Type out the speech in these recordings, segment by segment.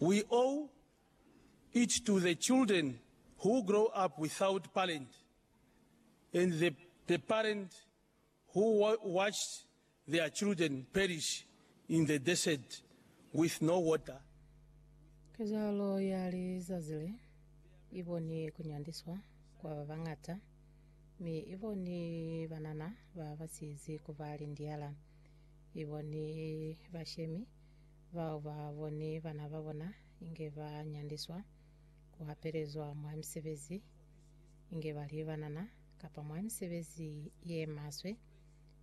We owe it to the children who grow up without parent and the the parent who watched their children perish in the desert with no water. Kezahalo ya lizazi le i boni ku nyandiswa kwa ba bañata, mi i boni banana ba ba sizi ku ba lindiala. I boni bashemi. bao ba boni bana ba bona inge ba nyandiswa, ku hapelezwa mwa misebezi inge ba li banana, kapa mwa misebezi ye maswe,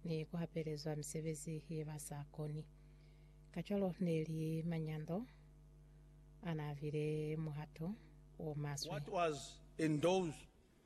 ni ku hapelezwa misebezi ye ba sa koni. Kacwalo ne li manyando a n'a bile muhato o maswe. What was in those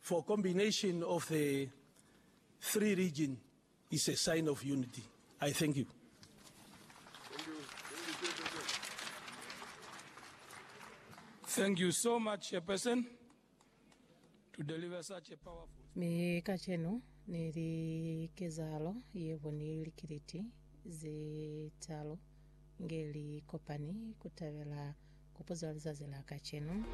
For combination of the three region is a sign of unity. I thank you. Thank you so much, Chairperson, to deliver such a powerful. Mi kacenu ni li kezahalo yebo ni likiliti ze talu nge li kopani kutabela kopo za lizazi la kacenu.